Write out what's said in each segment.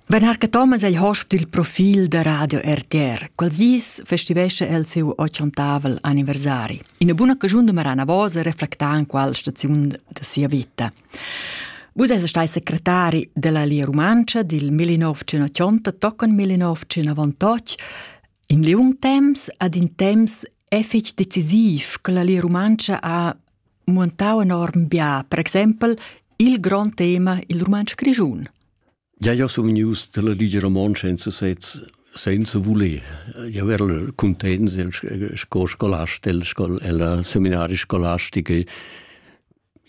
Ben Harca Thomas ei hosp dil profil da Radio RTR. Quels dis festivescha el siu ochontavel anniversari. Ina buna cagiun de Marana Vosa reflecta en qual staziun de sia vita. Vus eis stai secretari della Lia Rumantscha dil 1980 toccon 1998 in liung temps ad in temps e fetg decisiv che la Lia Rumantscha ha muentau enorm bia, per exempel il grond tema il rumantsch grischun. Ja, ja sun vegnius dalla Ligia Romontscha in sesez senza voler. Io ero contents sco scolast del scol, ella seminaria scolastica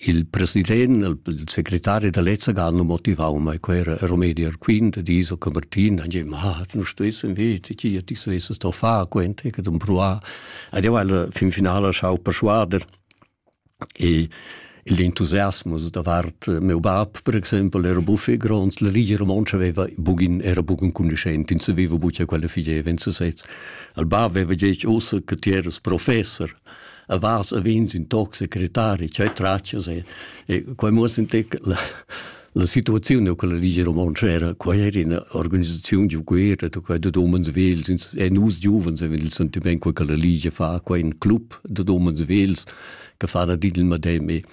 il president, il segretario dell'Ezzagan lo motivau, ma quel era Romedi Arquin, de Iso Camertin, e diceva, ah, tu non stessi vedi, chi ti stessi sto fa, quente, che tu provar. Ed io alla fin finale schau persuader, E il entusiasmus davart meu bab, per exempel, era buffé gronds. La Ligia Romontscha veva bugen, era bugen cugnuschent, ins saveva buca quella figeva en sesez. Il bab veva detg ussa che ti eras professor, a vas a vins in toc secretari, cioè traccias e, e quei muoss in tec la, La situaziun da quella Ligia Romontscha era quai era ina organisaziun giu guerra da quai dad umens vels e nus giuvens avevamo il sentiment che quella Ligia fa quai in club dad umens vels che fa da il medem e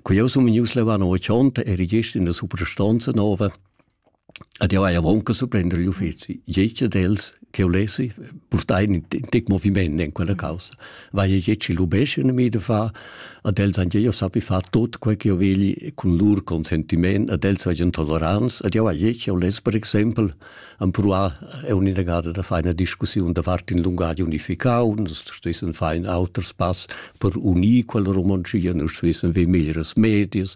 Quei som news levano ochont er gest in der Superstanza nova Ed jeu hai aunc surprender igl uffeci. Tgei dad els che ulessi purtai in tec moviment en quella caussa. Vai e tgei lubescien mi da far, ad els han jeu sappi far tot quei che jeu vegli cun lur consentiment, ad els seigien tolerants, ed jeu hai tgei uless per exempel empruar un'inagada da far ina discussiun davart in lungatg unificau, nus stuessen far in auter spass per unir quella romontschia, nus stuessen ver meglieras medias,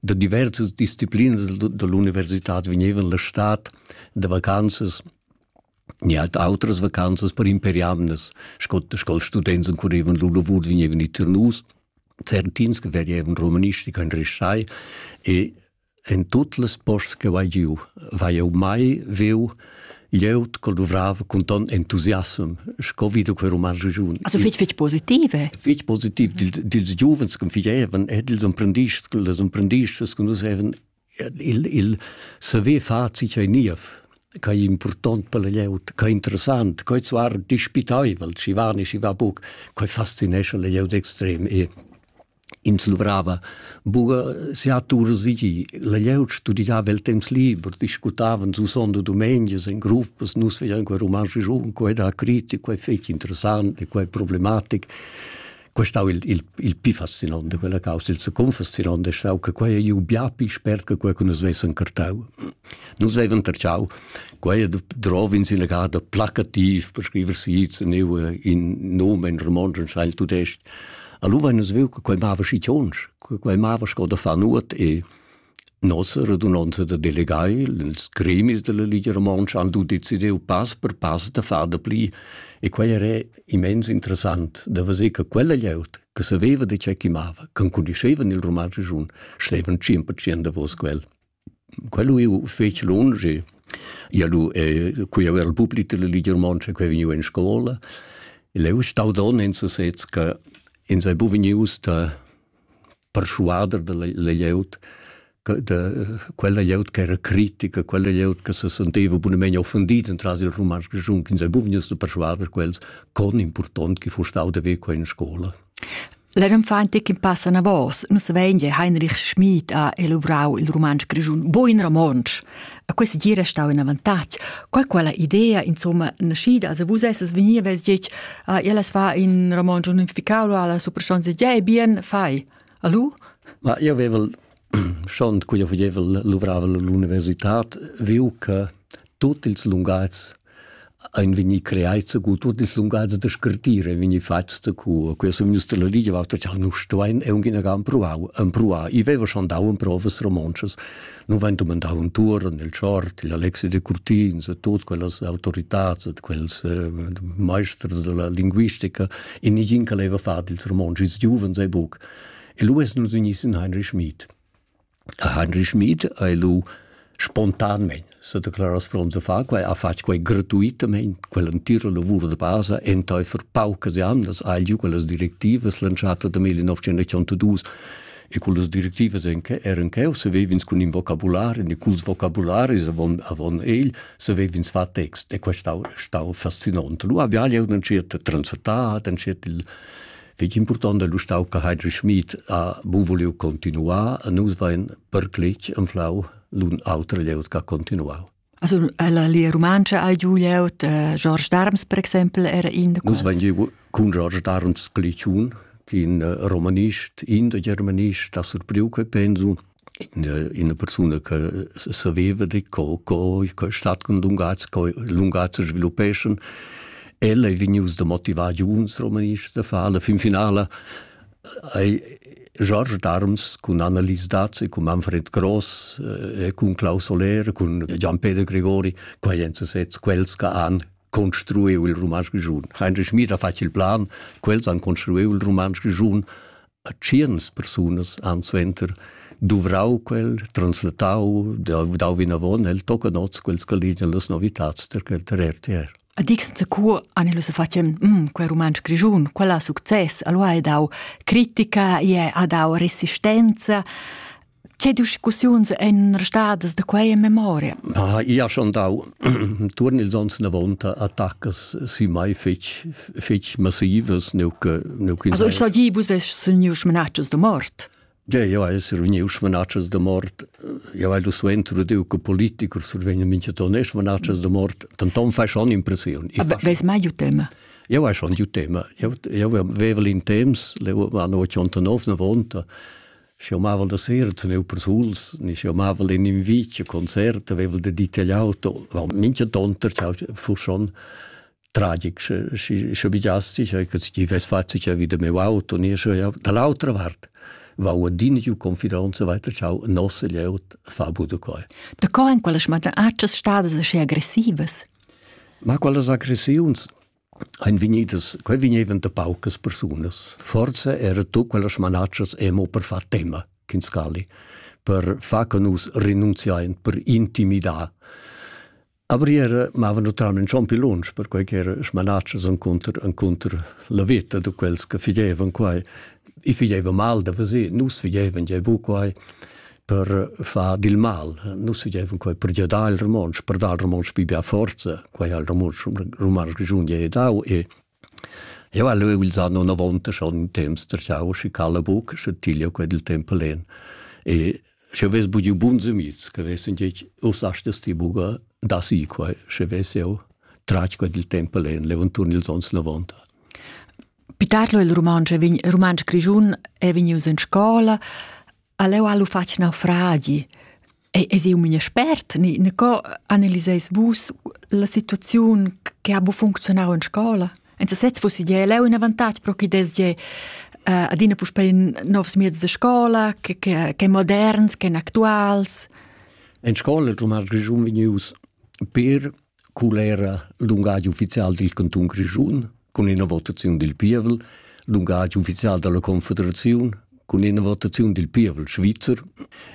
da diversas disciplinas dall'universitad vegnevan la stad da vacanzas ni halt outras vacanzas per imperiamnas sco sco students currevan lur lavur vegnevan i Ternus certins che vegevan romanistica in restai e en tut les posts che vai giu vai eu mai veu glieud che duvrava cun ton entusiasm sco vi da quei roman regiun. Also fitg fitg positive. Fitg positiv dils giuvens che fievan e dils imprendists, les imprendists che nus haven il il saver far si ei niev che è important per la glieud, che è interessant, che è zwar dispitaivel, ci va ne ci va buc, che fascinesce la glieud extrem e Ins luvrava buca sia tur sigi. La glieud studidava el temps liber, discutavan susond dumengias en gruppas, nus vegian quei romansch giun, quei da critic, quei fetg interessant, quei problematic. Quei stau il, il, il pi fascinante, quella causa, il confascinante, stau che quei ei bia pi spert che quei che nus vessen cartau. Nus vevan terciau, quei drov in sina gada placativ per scriver sits, in nomen romansch, in scheil tudest. Allora vein nus viu che quei mava schi tionsch, che quei mava sco da far nuot e nossa radunonza da delegai, ils gremis della Ligia Romontscha han tu decidiu pass per pass da far da pli e quei era immens interessant da vedere che quella glieud che saveva di che chi mava, che cunoscevan il romansch giun, stevan 100% davos quel. Quel lu fetg lunsch. Ia lu cui aveva il public della Ligia Romontscha che vegniu en scola. El ei uss stau donn en sesez che ins ei buca vegnius da perschuader dalla glieud da quella glieud che era critica, quella glieud che se senteva bunamein offendida entras il rumantsch grischun, ins ei buca vegnius da perschuader quels con impurtont che fuss stau da ver quei en scola. La renfan che pass anavos, nus vein che Heinrich Schmid ha elavorau il rumantsch grischun buin romontsch. A questa gira stau in avantatg. Qual quella idea, insomma, naschida, als vus esses vegni vess detg, ah, ellas fa in romontsch unificau, alla superstonza, ja, bien, fai. Alu? Ma io avevel Schont quia vegnevel luvravel l'università viu che tuot ils lungatgs ein vegni creai cu tuot ils lungatgs da scrittir ein vegni fats cu quia sun gnüs la ligia vatta cha nus stuein e ungin aga empruau empruar. I veva schon dau emprovas romontschas. Nu vain dumandau intuorn il Tschort, il Alexi de Curtins e tuot quellas autoritats ed quels maesters della linguistica e nigin che leva far dils romontschs. Ils giuvens ei buc. E lu es nus ignis in Heinrich Schmid. A Heinrich Schmid hai lu spontanmein s'ha declaras pront da far quai, ha fatg quai gratuitamain, quell'entira lavur da basa, entaifer paucas jamnas ha giu quellas directivas lantschata da 1982 e cullas directivas eran cheu savev'ins cun in vocabulari e culs vocabularis avon avon egl savev'ins far text e quest stau stau fascinant. Lu habia jeu entschet a translatar, entschet il Fich important è l'ustau che Heidrich Schmid ha bu vuliu continuar e nus vain perclich anflau l'un auter glieud che ha continuau. Also la lia romancha ha giu glieud, eh, George Darms per exempel era in da Nus vain giu cun George Darms Glitschun, in eh, romanist, in da germanist, da surpriu che pensu, ina persuna che saveva di co co co stat cun lungatgs co lungatgs sviluppeschan ella ei vegnius da motivar giuns romanists da far la fin finala ei George Darms cun Annelies Daz e cun Manfred Gross e cun Klaus Oller cun Gian-Peter Gregori quei ein sezs quels che han construiu il romansch grischun Heinrich Schmid ha fatg il plan quels han construiu il romansch grischun a tschernas persunas han suenter duvrau quel, translatau, dau vinavon, el tocca nots quels che ligian las novitads per der RTR. A dixen cu an illu se facem, mm, quel romansch grigiun, quella success, allora ha dau critica, e ha dau resistenza. Che discussiuns ein restadas da quei in memoria? Ha ia schon dau turn ils ons davonta attaccas si mai fetg fetg massivas nuc nuc Also ich sagi vus ves suniu schmenatschas da mort. Ja, ja, es er uniu schmanatschas da mort. Ja, weil du suenter du che politiker survegna mincha ton es schmanatschas da mort, dann ton fai schon impression. Aber weiß mai ju tema? Ja, vai schon ju tema. Ja, ja, vevel in temps, le va no 89 na vonta. Schi amavel da sera teneva persuls, ni schi amavel in invicia concert, aveva de detagliau tot. Mincha tonter ciao fu schon tragic, schi sche bigiasti, sche chi ves fatg cha vi da meu auto, ni sche ja dall'autra vart va adina giu confidonza weiter ciao nosse leut fa bu da coi. Da co en quella schmata accias stadas aschi aggressivas? Ma quellas aggressiuns ein vegnidas, quei vegnevan da paucas persunas. Forza era tu quellas manatschas emo per far tema, Kinskali, per far che nus renunziain, per intimidar. Aber era mava naturalmente schon più lunch, per quei che era smanatschas encontro, encontro la vita de quels che figevan quai. I figevan mal da vesir, nus figevan je bu quai. per far dil mal. Nus dieven quei per giadar il romontsch, per dar il romontsch pli bia forza, quei ha il romontsch romansch grischun ge dau e Eu ha leu ils anno 90 schon in temps terciau schi cala buc, sche tiglio quei dil tempo len. E sche ves bugiu bun zemiz, che vessen gec us astes ti buga da si quei, sche ves eu trach quei dil tempo len, levantun ils ons 90. Pitarlo il romansch vegn romansch grischun è vegnius in scola, Aleu ha lu fatg naufragi. E es eu mia spert, ni, ni co analiseis vus la situaziun che ha bu funzionau in scola? En sesez fussi gie leu in avantatg pro chi des gie uh, adina puspei novs mieds de scola, che, che, che moderns, che actuals. En scola il rumar grischun vegnius per Cul era l'ungadi ufficial dil cantun Grischun cun ina votaziun dil pievel, l'ungadi ufficial dalla confederaziun cun ina votaziun dil pievel svizzer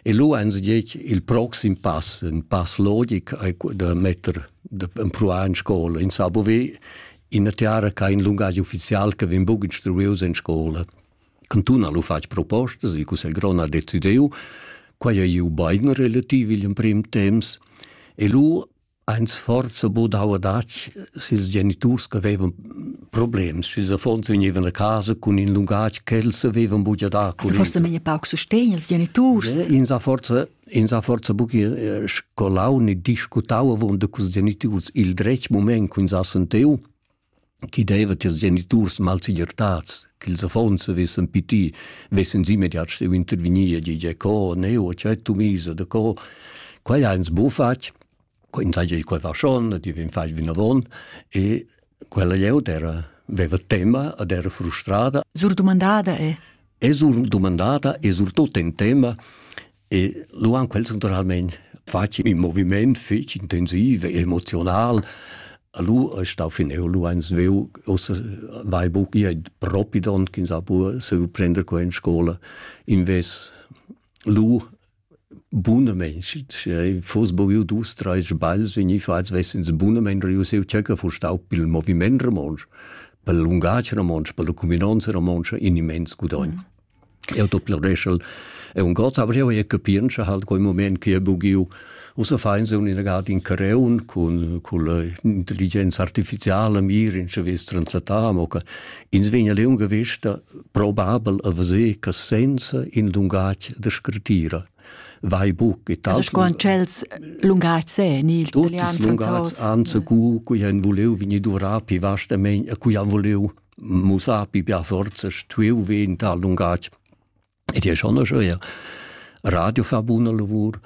e lu ein se detg il proxim pass, in pass logic ei da metter da empruar in scola in Sabove, ina tiara che ha in lungadi ufficial che vegn buca instruius en scola. Cantun ha lu fatg propostas, il Cussegl grond ha decidiu, quei ei iu bein relativ igl emprim temps e lu ein sforzo budau adatg sils geniturs che vevan problems, sils affons vegnevan a casa cun in lungatg ch'els avevan buca da curriculum. Forse meglio pauc sustegn ils geniturs. Eh, ins ha forse ins ha forse buca scolau né discutau avon da cus geniturs il dretg moment che ins ha sentiu chi deva tiers geniturs malsegirtats ch'ils affons vessen piti, vessen immediat steu intervegnir, gie co, ne, o c'è tu misa de co. Quai ha ins bu fatg, co ins ha quei faschon, ti vin fai vinavon, e quella glieud era veva tema ed era frustrada. Sur dumandada è? È sur dumandada e surtut in tema E lu han quels naturalmein fatg in moviment fetg intensiv e emotional. Lu è stau fineu, lu ein sveu, ossa vai buc ia propi don ch'ins ha pur seu prender qua in scola. Invés lu bunamente, foss boviu dus, treis sbagls vegni fatgs, vessens bunamente riuseu tschecca fu stau pil moviment romontsch, per lungatg romontsch, per la cuminonza romontsch in immens gudogn. Mm. Eu do planeschel e un god avrìu eir capientscha ha'l quel mumaint chi he bugiu Ussa fain sun inagad in Careun cun culla intelligenza artificiala mir in vess transattà, amo che ins vegn a liunga vesta probabel a veser che senza in lungatg da scrittura vai buc e tal. Sco an tschels lungatgs è in il Tutti italian, lungatgs, franzos. anzi cu cui han vuliu vegni duvrà pi vastamein a cui han vuliu mussà pi bia forza stuiu ver in tal lungatg. Ed è schon eir Radio fa buna lavur,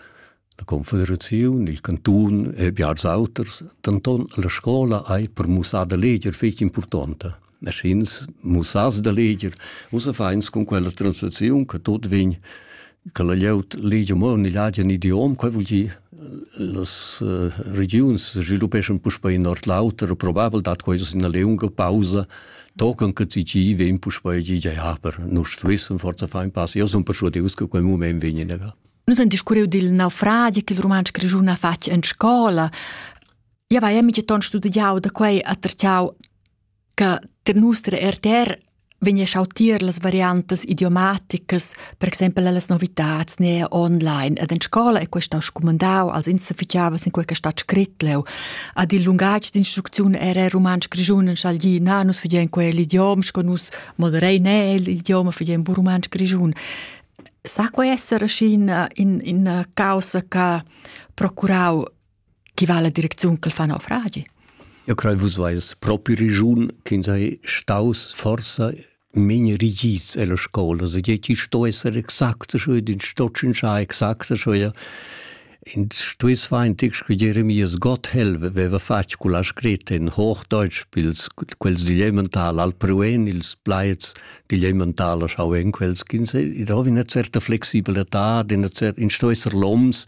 la Confederazione, il Canton e biars auters, denton la scola ei per mussar da leger fetg importante. Maschins mussas da leger, usa feins con quella translazione che tot vegn che la glieud legia mo igl agen idiom, quei vul dir las uh, regiuns sviluppeschan puspei in ord l'auter, probabel dat quei ina liunga pausa, tocan che ti gi vegn puspei gi ja, per nus wissen forza fein pass. Io sun persuadius che quel moment vegn negar. Nus han discurriu dil naufragi che il rumantsch grischun ha fatg en scola. Ja, vai, mi ton studiau da quei a terciau che ter nostra RTR vegna schau tier las variantas idiomaticas, per exempel las novitats ne online. Ed in scola è questo scumandau, also ins fichiava sin quei stat scrit leu. Ad il lungatg d'instruzione era romansch grigiun in schalgi, na, nus figien quell'idiom, sco nus moderei ne l'idioma figien bu romansch grigiun. Sa quei essere in, in, in causa che procurau Chi va la direcziun ch'el fa naufragi? Eu crei vus vais propi regiun ch'ins ha staus forsa mein rigids ella scola, se che chi sto esser exakt scho ed in sto tschinschar exakt scho ja. In stuess feintig che Jeremias Gotthelf veva fatg con la scritta in Hochdeutsch pils quels digl elemental al pruen ils plaids digl elemental schau en quels ch'ins id ho una certa flexibletà, in cer in sto esser loms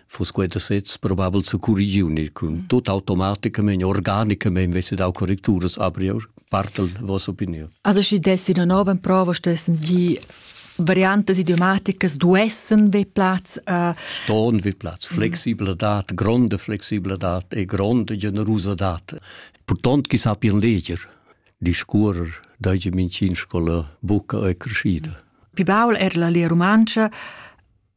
Fus quei da sez probabel securrigiunir cun tut automaticamain, organicamain vesse dau correcturas aprior partel vossa opinion. Also schi dessi una nova prova stessens gi variantes idiomaticas duessen vi Platz äh, Ston vi Platz Flexibledat gronde Flexibledat e gronde generosadat Portont chi sapien leger discurer Deutsche Medizin Scola buca e crescida Pi baul er la lia rumancha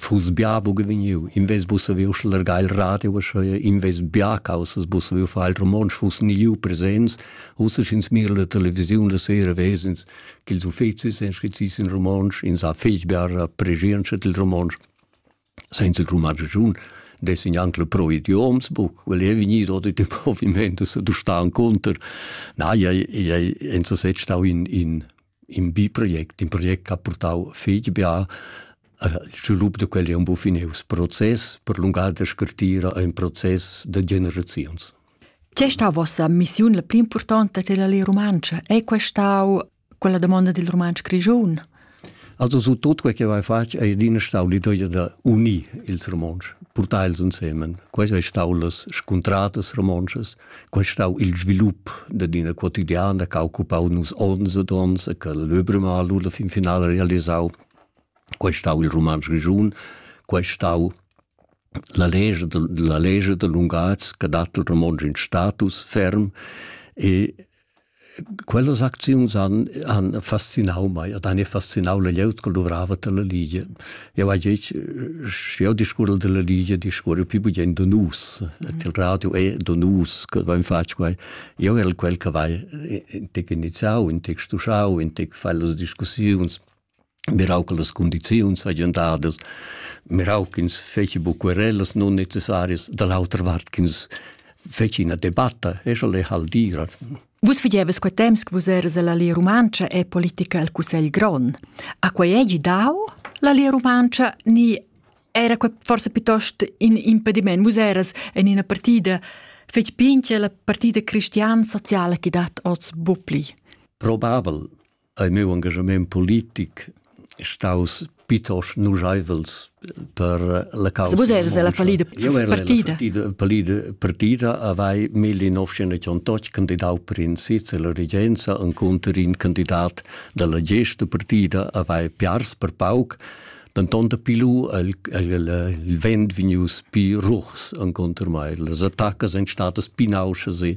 fuss bia buca vegniu, invés buca saviu schlargar il radio, uschia invés bia caussas buca saviu far il romontsch, fuss ni liu presents, ussa sch'ins mira la televisiun la sera vesens ch'ils uffecis ein scrizis in romontsch, ins ha fetg biara pregientscha dil romontsch. Senza il romontschun dessin anche le pro idioms buc, quel è vegnido di di provimento se du sta conter. Na, ei ei enza set stau in in in bi project, in project che ha portau fetg bia il svilup da quel è un po finius process, per lungare da scartira è un process da generazions. Che sta vostra missione la pli importante della lei romancia? È questa quella domanda del romancio grigion? Also su tutto quel che vai fatg è adina stau l'idea da unir ils romanci, portar els insieme. Questo è stato las scontradas romances, Quai stau il svilup dad ina quotidiana che ha occupau nus onns ed onns e che l'Öbremal la fin finala realisau. Quai stau il Rumantsch Grischun, quai stau la legge, la legge de lunghaz che dat il romontsch in status ferm e Quellas acziuns han, han fascinau mei ed han fascinau la glieud che luvrava dalla Ligia. Jau hai detg, sch'jeu discurrel dalla Ligia, discurrel pli bugen da nus. Ed il radio è da nus che vein fatg quei. Jeu erel quel che vai intec iniziau, intec stuschau, intec fai las discussiuns. mirau che las condiziuns hagien dadas, mirau ch'ins feci bu querellas non necessarias, da l'autra vart ch'ins feci ina debatta, e scha le hal dira. Vus figevas quei temps che vus eras alla Lia Rumantscha e politica al Cussegl Grond. A quei egi dau la Lia Rumantscha ni era quei forse piuttosto in impediment? Vus eras in ina partida fec pince la partida cristian sociala che dat oz bupli. Probabel, ei meu engagement politic staus pitosch nuscheivels per la causa. Vus eres la palida partida. Palida partida avei 1988 candidau per in sitz e la regenza en conter in candidat dalla gesta partida avei piars per pauc denton da pilu el, el, il vent vegnius pi ruchs en conter mai. Las attacas ein statas pinausas e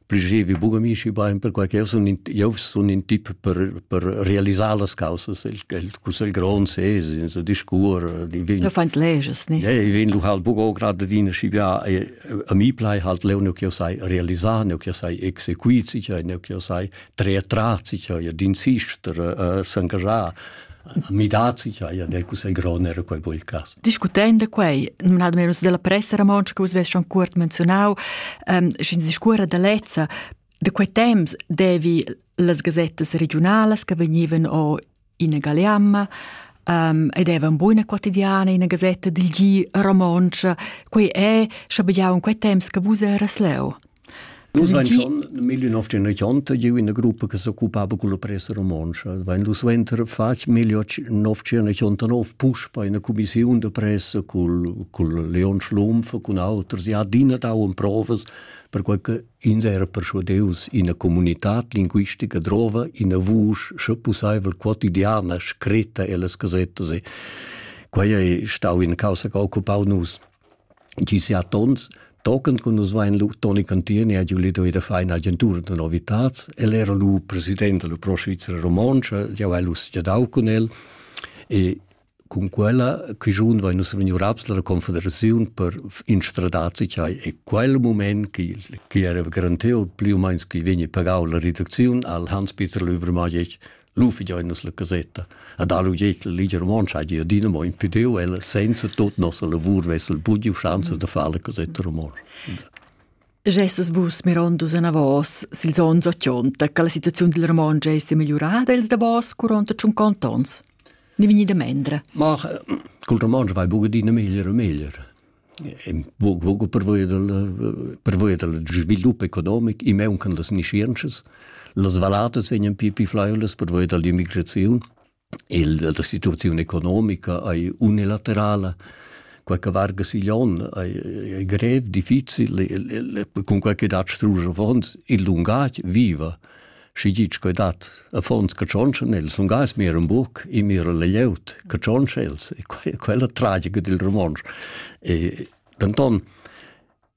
Prigevi buca mi schi bein perquei che sun in, jeu sun in tip per per realisar las causas el el cussel grond ses in so discur di vin. Du feins leges, ne? Ja, ich vin lu halt buco gerade dina schi bia a mi plai halt leu ne che sai realisar ne che sai exequit sicher ne che sai tre tra sicher ja din sister s'engagiar midats, ja, ja, del cussegl grond era quei buel cas. Discutend quei, nominado merus della pressa romontscha che vus vess schon cuort menzionau, ähm, sch'ins discuora da lezza, da quei temps devi las gazettas regionalas che vegnivan o in Galeamma, um, ed era una buona quotidiana in una gazzetta del G romoncia. Quei è, schabegiau in quei temps che vus eras leu. Nus ein schon nel 1980 giu ina gruppa che s'occupava con la presa romontscha. Wenn du suenter fatg 1989 push bei einer Kommission de Presse col, col Leon Schlumpf, con auters, ja adina dau provas perquei che ins era persuadeus ina comunitad linguistica drova, ina vusch, sche pusseivel quotidiana, scritta ellas gasettas. E quei ei stau in causa che occupau nus. chi siat ons tochen che nus vein lu Toni Cantieni ha giu lido ida fa in'agentura da novitats. El era lu president della Pro Svizzera Romontsch, jau hai lu dau cun el e cun quella quigiun vai nus vegniu raps dalla confederaziun per instradar cai e quel moment chi chi era garantiu più o meins chi vegni pagau la reducziun al Hans Peter Löber Majic lu figein nus la casetta ad alu jetel liger mon sai dir dina mo impediu el senza tot nossa lavur vessel bugiu chanzas da far la casetta romon Gesses vus mirondus anavos sils ons ochonta che la situaziun dil Ramon gesse migliurada els da vos curonta tschunquant ons? Ni vegni da mendre? Ma col Ramon vai buca dina meglier e meglier. buca pervia dal pervia dal svilup economic e mauncan las nischientschas las valladas vegnan più più flaiulas pervia dall'immigraziun e la situaziun economica ei unilaterala quei che varga sigl onn ei, ei grev, difficil, cun quei che dat strusch avons, il lungatg viva Schi gitg coi dat, affons che tschonschen els, sun gais mir un buc e mir le lieut, che tschonsch els, e quella tragica dil romansch. E denton,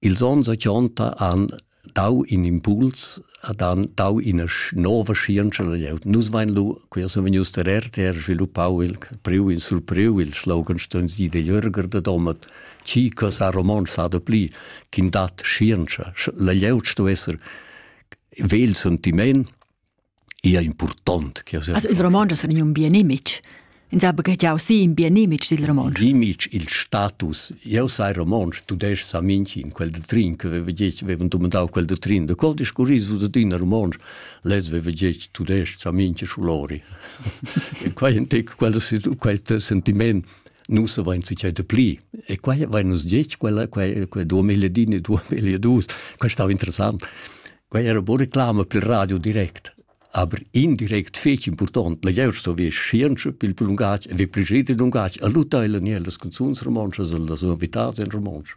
ils ons ochonta han dau in impuls, ad han dau ina nova scienza la lieut. Nus vain lu, quia sun vegnius der RTR sviluppau il priu in surpriu il slogan stuns di de Jürger de Domat, chi cosa romansch sa de pli, kin dat scienza. La lieut sto esser vegl sentiment ia impurtont. Also il romontsch es un bien image. Ins ha baghegiau si in bien image dil romontsch. Image, il status. Eu sai romontsch, tu des sa minchi in quel de trin, che veva gec, vevan domandau quel de trin, de col discurris du de din romontsch, lez veva gec, tu des sa minchi sulori. e quai entec quel, quel sentiment Nus avain sichai de pli. E quai avain nus ditg, quella, quai, quai 2010 e 2012. Quai stava interessant. Quai era buca reclama pel radio direct. Aber indirekt fetg important, la geuer sto vi scienza pil lungatg e vi presid lungatg a lutaila ni las canzuns romontschas, las novitats en romontsch.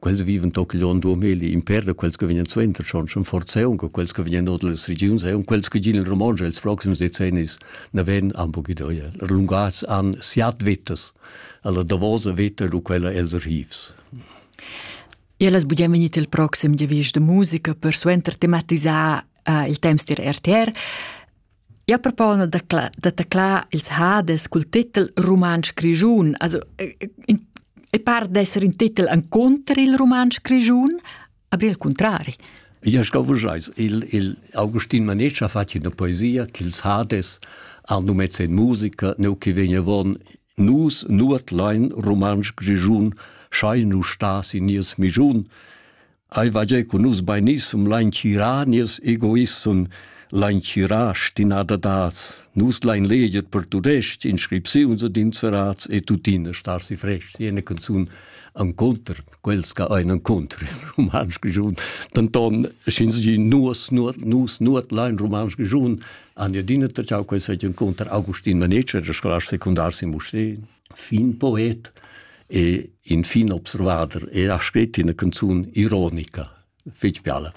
quels vivan toc on duameli in per da quels che vegnan suenter schon schon forza un quels che vegnan ord las regions e un quels che gin in Romontsch els proxims decennis na ven am bu gidoia lungats an siat vettas alla davosa vetta lu quella els archivs Ellas bugen vegnit il proxim giavisch de musica per suenter tematisar uh, il temps dir RTR Ja propona da, cla, da taclar ils hades cul titel Rumantsch Grischun. Also, e par d'esser in titel en conter il Rumantsch Grischun, aber il contrari. Ja, ich glaube, il, il Augustin Manetsch ha fatto una poesia che ils Hades hanno mezzo in musica, neu che vegna von Nus nuot lein Rumantsch Grischun, schein nu stas in nies Mischun. Ei va gia cun nus beinissem lein tgirar nies egoissem, lein tgirar stinadadads. Nus lein leger per tudestg inscripziuns ed inserats e tuttina star si frest. Jene canzun an conter, quels che ein an conter in romansch giun. Danton, schins gi nus, nus, nus, nus lein romansch giun, an adina ta ciao quei sei en conter Augustin Manetsch, der Schlasch sekundar si Moscheen. fin poet e infin observader e ha scrit ina canzun ironica fetg biala.